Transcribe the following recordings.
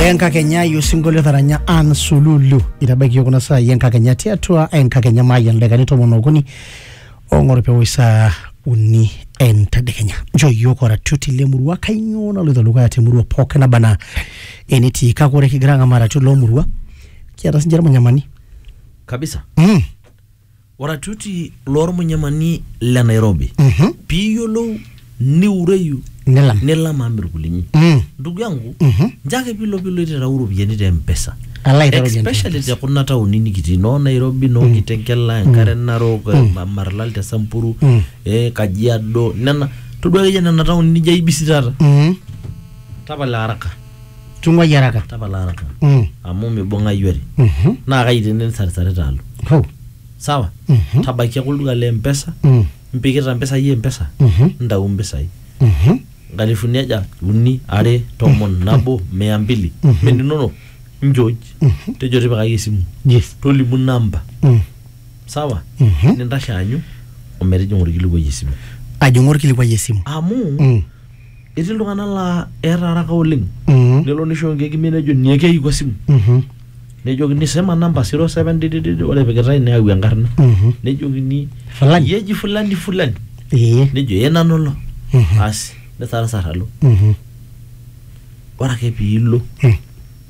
enkakenya ayiu osinkolio taranya an sululu itabaiki yiok kuna saai enkakenya tiatua enkakenya maayia ildaikani tomon okuni ong'or pewosh saa uni entadekenya nchoo yiok oratioti lemurua kainyoo naloito dukuya temurua pookin naba anaa enetii kake ore kigira ang'amaa iratiot lomurua kiata sinche irmanyamani kabisa mm. Oratioti lormunyamani le Nairobi. Mhm. Piyiolou niureyu Nilam. nilam amu irkulinyi. Mm. Ndugu yangu, Mhm. njo ake pilo pilo ititau iropiyiani te M-Pesa. Ala aitau iropiyiani te Especially te kuna taoni nikitii noo Nairobi, noo Kitengela, Enkare Narok, Ma- Marlal te Samburu, Mm. eh, Kajiado, nena todua akeyie nena taoni nijo aibisi taata. Mm. Tapala haraka. Tung'uai araka. tapala araka Mm. amu mibung'ayu are Mhm. naa kai tene nisarisarita alo Hoo. sawa Mhm. tabaiki ake olduka le mpesa Mm. impikita mpisai e mpesa Mhm. ntau mpisai Mhm. nkalifuni aja uni are tomon nabo mia mbili Mhm. meninono njooj Mhm. tejo tipikaki esimu Yes. tolimu namba Mm. sawa Mhm. nintashe aanyu ometijing'a orkilikuai esimu Ajing'u orkilikuai esimu. amu Mm. etii iltung'anak laa eeta araka oleng Mhm. nelo nisho nkeek imiet nejo niekeiku esimu Mhm. nejokini sema namba 07 didididi ore epikitae neyau enkarna Mhm. nejokini Fulani. "Iyie eji fulani fulani Ee. nejo ee nanu ilo Mhm. asi nisarasar alo Mhm. ore ake piilo Mm.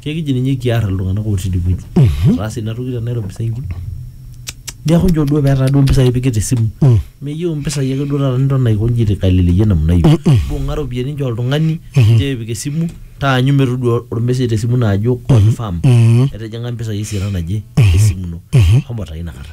Kekiji ninye kiar iltung'anak otii idie wueji. Etaase ina toki te Nairobi sainki. Neeku nchoo duo petaa duo impisai ipik te simu. Meyieu impisai ake duo taata niton aiko nji aitaleleyie namna hiyo. Mbung'a iropiyiani nchoo oltung'ani nchoo epik esimu taanyu metodua ormesej te simu ino ajo confirm etijing'a impisai esiana naje esimu ino. Shomo taa ina kata.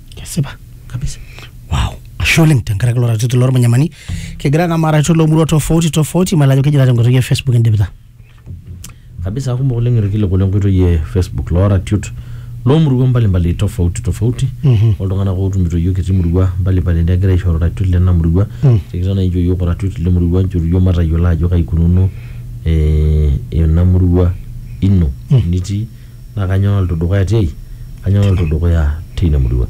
kesipa kabisa wow ashe oleng tenkaraki ilo ratioti lormanyamani kigira naa maaratiot loomurua tofauti tofauti mayiolo ajo kejira tenkoitoi e facebook indipita kabisa kumok oleng irkiliku lenkoitoi e facebook looratiot loomuruan mbalimbali tofauti tofauti Mhm. oltung'anak ootumito iyiook etii murua mbalimbali negira aishoru iratiot lena murua Mm. tikitam naa inchoo iyiook oratiot le murua nchoru iyiook matayiolo ajo kai ikununo eh, ena murua ino Mm. nitii naa kanyoo naloito dukuya tiai kanyoo naloito dukuya teina murua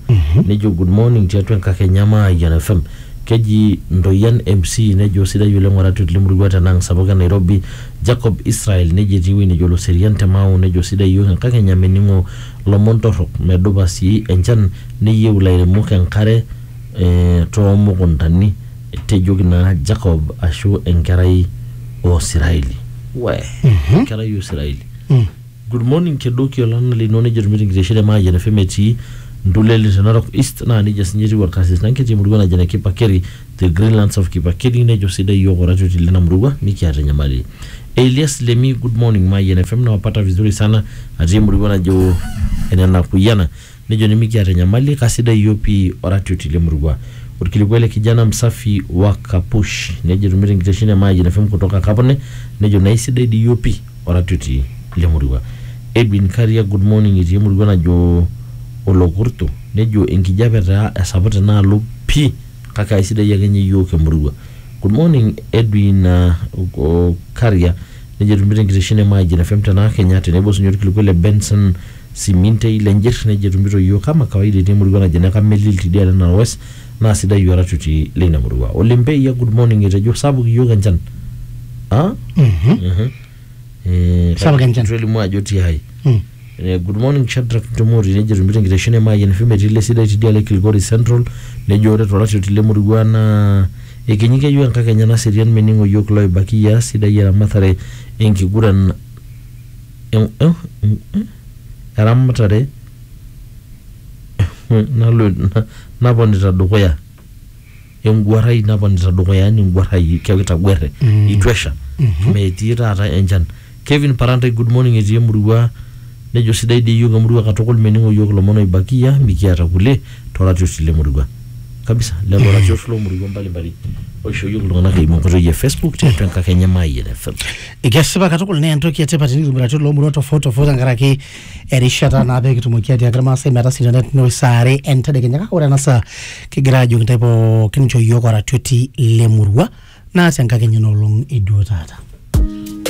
nejo good morning tiatua enkakenya Mayian FM keji Ntoyian MC nejo sidai oleng oratiot lemurua tenang sapuk e Nairobi Jacob Israel nejo etii ewueji nejo Loserian te Mau nejo sidai iyiook enkakenya mening'o lomon torrok medupa sii enchan neyieu ilairemok enkare eh, toomukuntani tejoki naa Jacob ashu enkerai oo Siraeli we enkerai oo Siraeli Good morning kedoki olana lino nejo Irmitingiteshe te Mayian FM etii Ndulele te Narok East naa nejia sinye etiu Olkasis Nanki te murua naji ene Kipakeri the Greenlands of Kipakeri nejo sidai iyiook oratioti lina murua mikiata enyamali. Elias Lemi Good morning Mayian FM nawapata vizuri sana atii emurua najo ene Nakuyiana Nejo nimikiata enyamali, kasidai iyiook pii oratioti le murua. Olkilikuai le Kijana Msafi wa Kapush. Nejo etumito enkitesheni e Mayian FM kutoka Kapune nejo naa eisidai dii iyiook pii oratioti le murua. Edwin Kariak, Good morning itii emurua najo Olokurtu. Nejo enkijape taa esapuk tenaalo pii kake aisidai ake ninye iyiook emurua. Good morning Edwin Kariak. Nejo etumito enkitesheni e Mayian FM tenaa Kenya tenebo sii ninye olkilikuai le Benson Simintei, Lenjir, nejo etumito iyiook kama kawaida etii emurua naji ene Kamelil tidialo Narok West naa sidai oratioti leina murua. Ole Mbeia, Good morning etejo sapuk iyiook enchan. Ah? Mhm. Eh, Sapuk kake enchan. eitu elimu ajo tiai. Mm. Eh, Good morning Shadrack Ntomori nejo etumito enkitesheni e Mayian FM etii ile sidai tidialo e Kilgoris Central nejo ore toratioti lemurua naa ekinyi keyieu enkakenya naserian mening'o iyiook iloibaki ias sidai eramatare enkiguran eramatare naponita dukuya enguarai naponita dukuya yani enguarai keeku itaguere itu esha metii taata enchan Kevin Parantai good morning etii emurua nejo sidai dii iyiook emurua katukul mening'o iyiook ilomon oibakia mikiata kulie toratioti lemurua kabisa lelo ratiot lomurua mbalimbali oishoo iyiook iltung'anak eimu enkoitoi e Facebook tiatua enkakenya e Mayian FM Kesipa katukul naa entoki etipat tenikitobirati iloomurua tofauti tofauti tenkaraki erishata naa pee kitumoki atiaaki irmaasai metasita netum saa are entedekenya kake ore ena saa kigira aajoki intae pookin inchoo iyiook oratioti lemurua naa tenkakenya enoolong e duo taata.